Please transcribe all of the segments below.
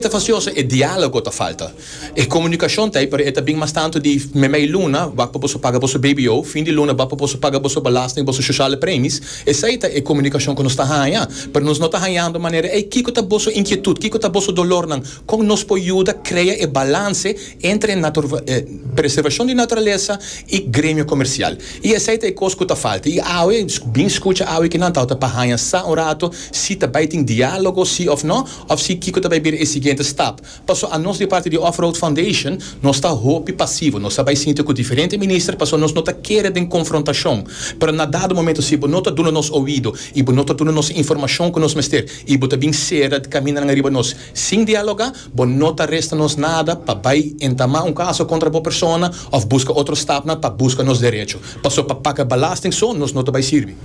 Ta facioso e dialogo ta falta. E comunicacion ta pero e ta bin mas tanto di memei luna wak pa boso paga boso bbo, fin di luna wak pa boso paga boso belasting, boso sociale premies. Esai ta e comunicacion cu nos ta haya pero nos no ta hayando manera ey kico ta boso inquietud, kico ta boso dolornan, con nos por yuda crea e balance entre e preservacion di naturaleza y gremio comercial. Y esai ta e cos cu ta falta. Y awe, bin scucha awe ki nan tawata pa haya sa un rato si ta bay tin dialogo si of no. Of si kiko ta bai bira e siguiente stap. Paso a nos di parti di Offroad Foundation nos ta hopi pasivo, nos ta bai sinti ku diferente minister paso nos no ta kere den konfrontashon. Pero na dado momento si bo no ta duna nos oido i bo no ta duna nos e informashon ku nos mester i bo ta bin sera kamindanan riba nos sin dialoga, bo no ta resta nos nada pa bai entamá un kaso kontra bo persona of buska otro stapnan pa buska nos derecho. Paso pa paga balasting so nos no ta bai sirbi.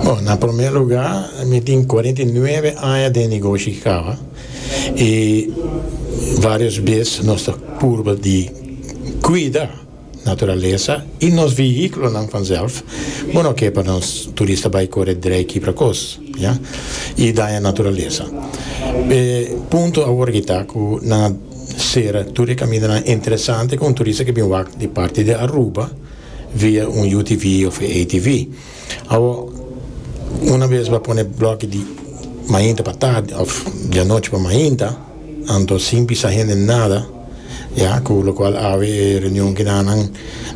Bon, na prome luga mi tin cuarenta y nueve aña den negoshi ki caba y varios bes nos ta purba di cuida naturalesa y nos vehiculonan vanzelf bo no ke pa nos turista bai core drei kibra cos ya y daña naturalesa. E punto awor ki ta cu nan a cera tur e camindanan interesante cu un turista ke bin wak di parti di Aruba. via un UTV of e ATV. Awo una bes bo a pone bloki di mainta pa tardi of di anochi pa mainta anto sin pisa hende nada ya cu locual awe e reunion ki nan nan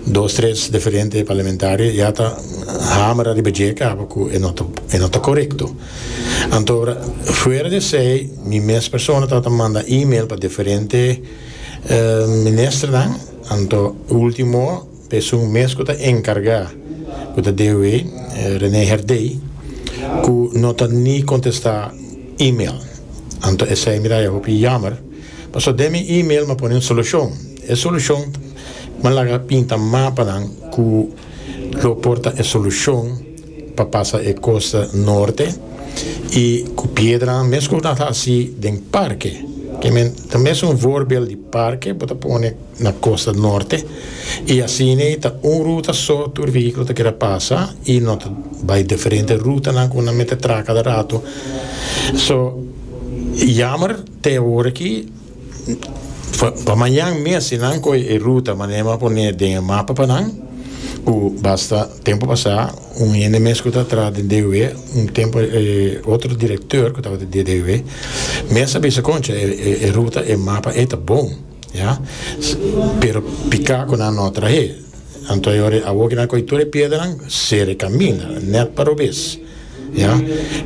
dos tres diferente parlamentario ya ta hamera riba dje caba cu e no ta e no ta corecto antora fuera di esey mi mes persona ta ta manda email pa diferente minister nan. Anto ultimo pesun mes ku ta enkargá ku ta debe René Herdey ku no ta ni kontestá email. Anto esei mi raya hopi yamer paso den mi email mi a pone un solushon. E solushon mi a laga pinta mapa nan ku lo por ta e solushon. pa pasa e costa norte y cu piedranan mes como nan ta haci den parke que men ta mes un voorbeeld di parke bo ta pone na costa norte y asina ta un ruta so tur vehiculo ta kere pasa y no ta bay diferente rutanan cu nan mete traca cada rato so jammer te awor aki. Pa mañan mes si nan koe e ruta Manema pone den e mapa pa nan ku basta tempu pasá un hende mes ku ta traha den DUW un tempu e otro direktor ku tabata di DUW mes a bisa koncha e ruta e mapa ei ta bon ya pero pika ku nan no a trah'é. Anto e ora awor kinan koe tur e piedranan ser e kaminda net pa robes ya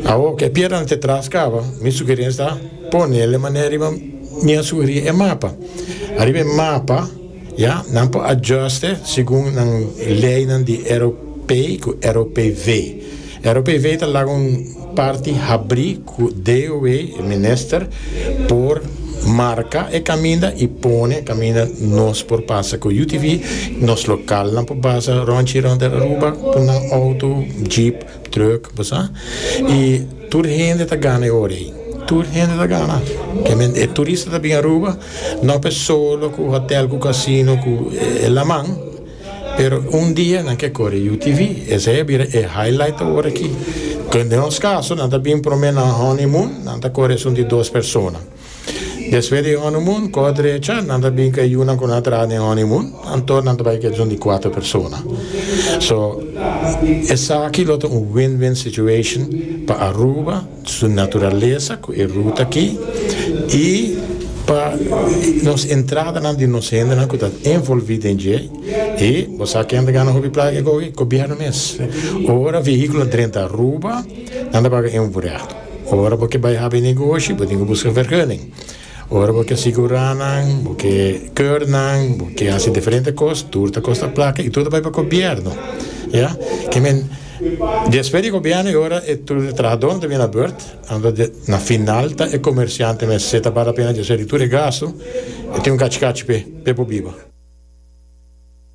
awor ke piedranan te traskaba mi sugerensia ta ponele manera riba mi a sugeri e mapa ariba e mapa ya nan por adjuste segun nan leynan di eropei ku eropv. ROPV ta laga un parti habrí ku DOW, e minister, por marka e kaminda i pone e kaminda nos por pasa ku UTV. Nos lokalnan por basa ròntji rònt di Aruba ku nan outo, jeep, trùk, bo sa. I tur hende ta gana e ora ei. Tur hende ta gana. E turista ta bini Aruba, no pe solo ku hòtèl ku kasino ku e laman. Pero un dia nan ke kore UTV, esei a bira e highlight awor aki. Kende nos kaso nan ta bin prome na un honeymoon, nan ta kore esun di dos persona. Despues di e honeymoon, kos drecha, nan ta bin ku e yunan ku nan a traha den honeymoon, anto nan ta bai ku esun di kuater persona. So, esaki lo ta un win-win situation pa Aruba, su naturalesa cu e ruta aki y pa nos entradanan di nos hendenan cu ta envolvi den dje y bo sa ken ta gana hopi placa ke coge? Gobierno mes. Ora vehiculo a drenta Aruba nan ta paga un vrea. Ora bo ke bay habi negoshi bo tin cu busca vergunning. Ora bo ke sigurá nan, bo ke keur nan, bo ke hasi diferente kos, tur ta kosta plaka i tur ta bai pa gobièrnu. Ya. Ke men, despues di gobièrnu i ora e tur e trahadó nan ta bini na bùrt, anto de, na final ta e komersiante mes se ta bal lapena djosé di tur e gastu, e tin un kachi kachi p'e, p'e por biba.